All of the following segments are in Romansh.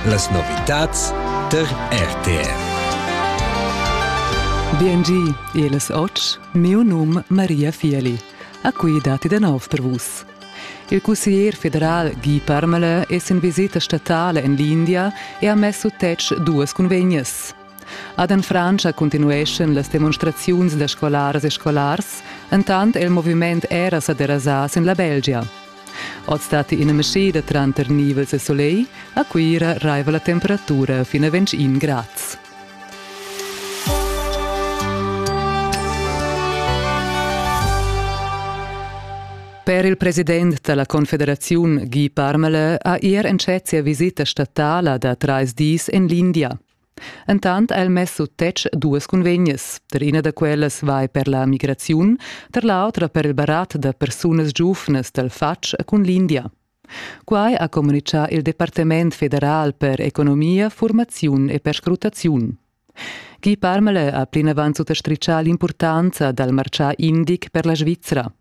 Las novitads tar RTR. BNG, eles oč, miu num Maria Fieli. A cui dati da nov per vus. Il cussier federal Guy Parmele es in visita statale en l'India e ha messo tec duas convegnas. Ad en Frantscha continueschan las demonstraziuns da scolaras e scolars, entant è il moviment era sa derasà sin la Belgia. Oz datti ina mescheda tranter nivels e solegl, a Cuira raiva la temperatura fin a 21 grads. Per il president da la Confederaziun Guy Parmelin ha er entschet sia visita statala da trais dis en l'India. Entant ha el mess sut tetg duas cunvegnas. Tar ina da quellas vai per la migraziun, tar l'autra per il barat da persunas giuvnas dal fatg cun l'India. Quai ha communitgà il Departament federal per economia, formaziun e perscrutaziun. Guy Parmele ha plinavant suttastritgà l'impurtanza dal martgà indic per la Svizra.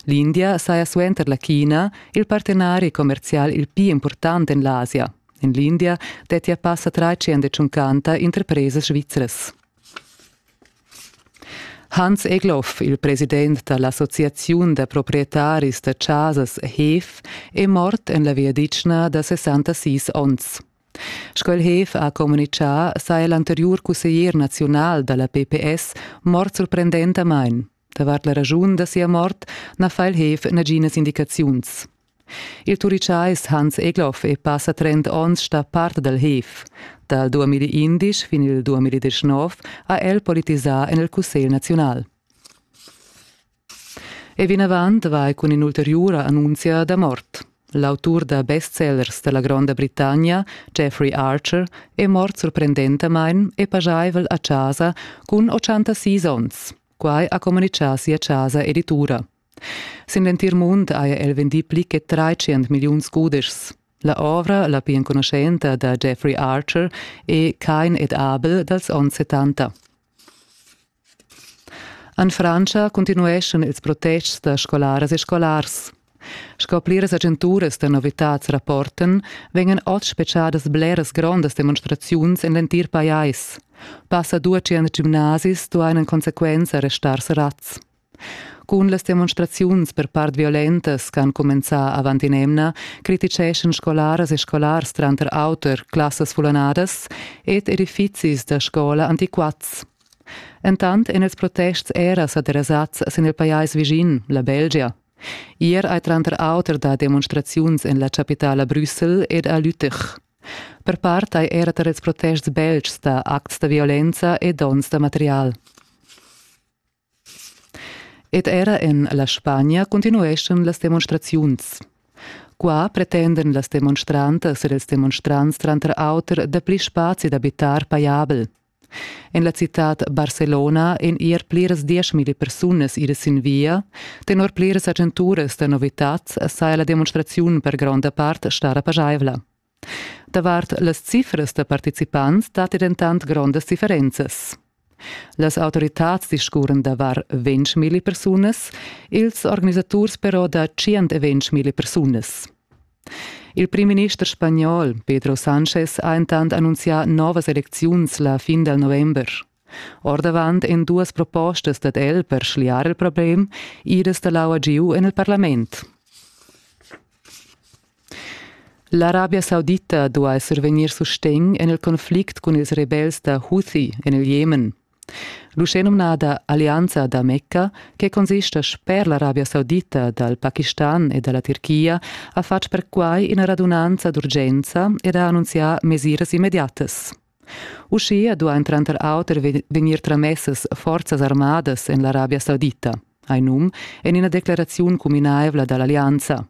L'India saja suenter la China il partenari commerzial il pli impurtant en l'Asia. En l'India dettia passa trecentschunchanta interpresas svizras. Hans Egloff, il president da l'Associaziun da proprietaris da chasas HEF, è mort en la viadichna da 66 onns. Sco il HEF ha communitgà, saja l'anteriur cusseglier naziunal da la PPS mort surprendentamain. Davart la raschun da sia mort na fa il Heef naginas indicaziuns. Il Turichais Hans Egloff è passa trend onns stà part dal Heef. Dal 2011 fin il 2019 ha el politisà en il Cussegl naziunal. E vinavant vai cun in'ulteriura annunzia da mort. L'autur da bestsellers da la Gronda Britannia, Jeffrey Archer, è mort surprendentamain e pajaivel a chasa cun 86 onns. Quai ha communitgà sia chasa editura. Sin l'entir mund haja el vendì pli che tratschient milliuns cudeschs. La ovra, la pli enconuschenta da Jeffrey Archer, è Kein ed Abel dals onns 70. En Frantscha continueschan ils protests da scolaras e scolars. Sco pliras agenturas da novitads rapportan, vegnan oz spetgadas bleras grondas demonstraziuns en l'entir pajais. Passa duatschient gimnasis duain en consequenza restar serrads. Cun las demonstraziuns per part violentas che han cumenzà avant in'emna criticeschan scolaras e scolars tranter auter classas fullanadas ed edifizis da scola antiquats. Entant èn ils protests era sa derasads sin il pajais vischin, la Belgia. Ier ei tranter auter da demonstraziuns en la capitala Brüssel ed a Lüttich. Per part ei era tar ils protests beltgs da acts da violenza e donns da material. Ed era en la Spagna continueschan las demonstraziuns. Qua pretendan las demonstrantas ed ils demonstrants tranter auter dapli spazi d'abitar pajabel. En la citad Barcelona ein ier pliras dieschmilli persunas idas sin via. Tenor pliras agenturas da novitads saja la demonstraziun per gronda part stara pageivla. Davart las cifras da participants datti dentant grondas differenzas. Las autoritads discurren da var 20.000 persunas, ils organisaturs però da 120.000 persunas. Il primminister spagnol Pedro Sanchez ha entant annunzià novas elecziuns la fin dal november. Ordavant èn duas propostas dad el per schliar il problem idas da l'aua giu en il parlament. L'Arabia Saudita duai survegnir sustegn en il conflict cun ils rebels da Houthi en il Jemen. L'uschenumnada Allianza da Mecca, che consista sper l'Arabia Saudita dal Pakistan e da la Tirchia, ha fatg perquai ina radunanza d'urgenza ed ha annunzià mesiras immediatas. Uschia duain tranter auter vegnir tramessas forzas armadas en l'Arabia Saudita, hai num en ina decleraziun cuminaivla da l'allianza.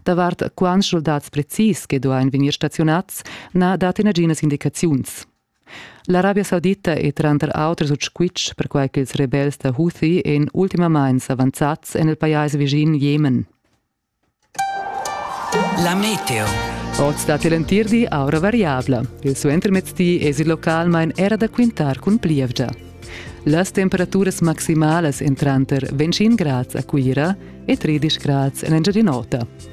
Davart quants schuldads precis che duain vegnir staziunads, na dat naginas indicaziuns. L'arabia saudita è tranter auter sut squitsch perquai ch'ils rebels da Houthi èn ultimamain s'avanzads en il pajais vischin Jemen. La meteo. Oz datti l'entirdi aura variabla. Il suentermezdi èsi localmain era da quintar cun plievgia. Las temperaturas maximalas èn tranter 25 grads a Cuira e 13 grads en Engiadin'Ota.